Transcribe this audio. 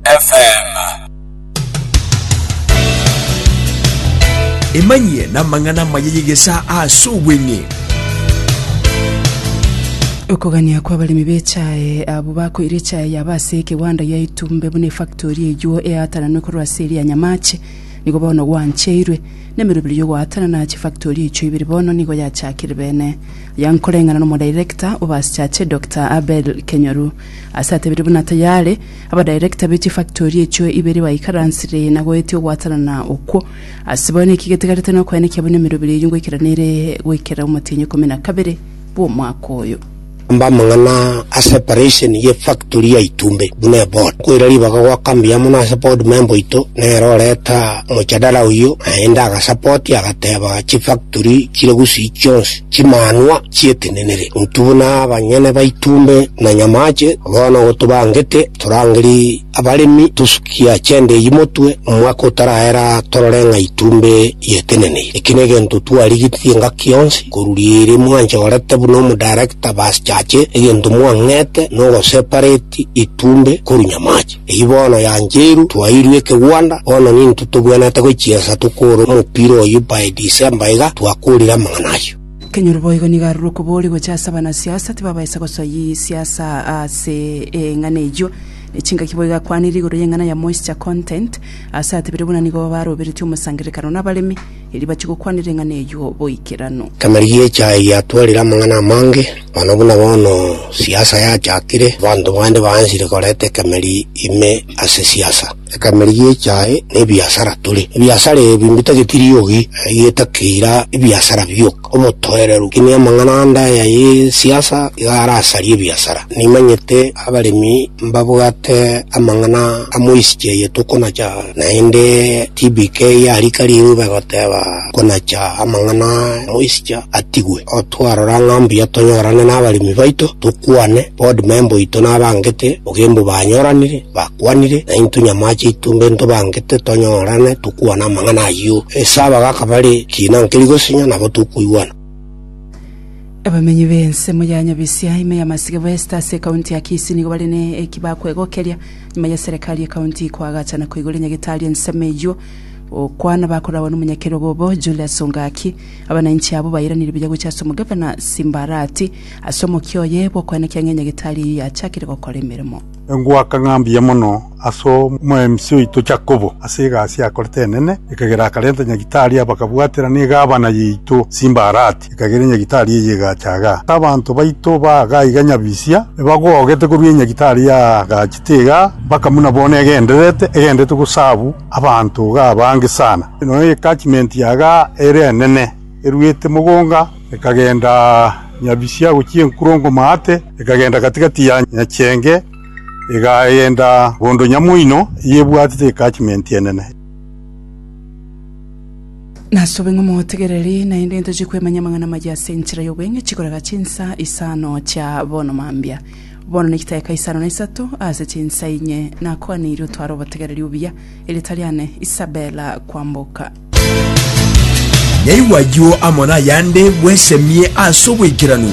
FM. Emanyie namang'ana amaya y'egesaa ase obweng'e. Okogania kw'abaremi b'echae abwo bakoire echae yabo ase ekegwanda yaitwa mbe buna efactori eywo eaatananwe korwa ase eria ya Nyamache. Nigo bono gwancheirwe. Nemeroberi y'ogoatanana ya chifactori echio ibere bono nigo yachakire bene. Aya nkoreng'ana nomo director obaaschache Doctor Abel Kenyoru. Ase atebire buna tayare, abadirector be chifactori echio ibere baikaransire na goetia ogwatanana okwo. Ase bono eki getigarete nokoenekia buna emerobera eyio ngoikera nere goikera omotienyi ikomi na kabere bw'omwaka oyo. Amba amang'ana ase eparesheni y'efactori ya Itumbe buna eboard. Nkoira ribaga goaka mbuya mono ase board member oito nere oreta mojadala oyio naende agasapoti agateba chifactori chire gusii chionsi. Chimanwa chi'etenenere, intwe buna abanyene baitumbe na nyamache, bono gotobangete torangeri abaremi tosukia chende eyio motwe, omwaka otaraera torore ng'a itumbe yeteneneire. Eki negento twarigetie engaki yonsi koruria ere mwanchorete buna omodarekta basichache egento mwang'ete nogosepareti itumbe korwa nyamache. Eyio bono yanchairu twairwe ekegwanda, bono nintwe togwenerete gochiesa tokore omopira oyio by December iga twakorire amang'ana ayio. Kenyoro boigo nigo arure okobori gocha ase abanasiasa tibabaisa gosoyia siasa ase eng'ana eyio. Ne chingaki boigo akwanire igoro y'eng'ana ya moisture content ase atebire buna nigo baroberetie omosangererekano nabaremi. Erio bachigokwana ring'ana eyio boikeranu. Emeeri y'echae yatwarire amang'ana amange, manu buna bono siasa yachakire, abanto bande baansire koreta ekemeeri ime ase siasa. Ekemeeri y'echae nebiasara tore. Ebiasara ebi mbitageti riogi, egetaki eira ebiasara bi'oka. Omotoereru, ki ne amang'ana ande aya ye siasa iga arasarie ebiasara? Nimanyete abaremi mbabwate amang'ana a moisichia eye tokonacha, naende TBK ya rika ring'u begoteba konacha amang'ana a moisichia atigwe. Otwarora ng'a mbuya tonyorane nabaremi baito, tokwane, board member oito nabangete, bogembu banyoranire, Bakwanire, na intwe nyamaache aitwe mbe ntobangete tonyorane tokwana amang'ana ayio. Ase aba gakaba are kiina nkeri gosinya, nabo tokoigwana. Abamenyi b'ensemo ya Nyabisia, ime ya Masige West, ase ekaunti ya Kisii nigo bare ne eki bakwegokeria nyuma ya serikali y'ekaunti koagachana koigoro enyagetari ensemo eyio. Gokwana bakoragwa n'omonyakerogo obo, Julius Ongaki, abananchi abwo bairanire buya gochia ase omogavana Simbarati ase omokia oye bw'okoenekia ng'a enyagetari eyio yachakire gokora emeremo. Engwaka ng'a mbuya mono as'omweMC oito Jakobo ase egasi akorete enene, ekagera akarenta nyagitari abakabwatera negavana yaito Simbarati, ekagera enyagitari eye egacha iga. Abanto baito ba iga iga nyabisia ebagogete korwa enyagitari yagachete iga mpaka buna bono egendererete, egendererete gosabu abanto iga abange sana. Nonya ecatchment ya iga ere enene, eruete mogonga. Ekagenda nyabisia gochia enkurongo maate, ekagenda gati‐gati ya nyachenge, egagenda bondo nyamoino eyebwatete ecatchment enene. Nasobe ng'a motegereri, naende tochie kwemanya amang'ana amayia ase enchera y'obweng'echi korega chinsa isano chia bono mambia. Bono ne chitaeka isano na isato ase chinsa inye, nakwaneirie otware obotegereri obuya, erieta riane Isabella kwamboka. Nyaigwa ayio amo nayande bwesemie ase obwekeranu.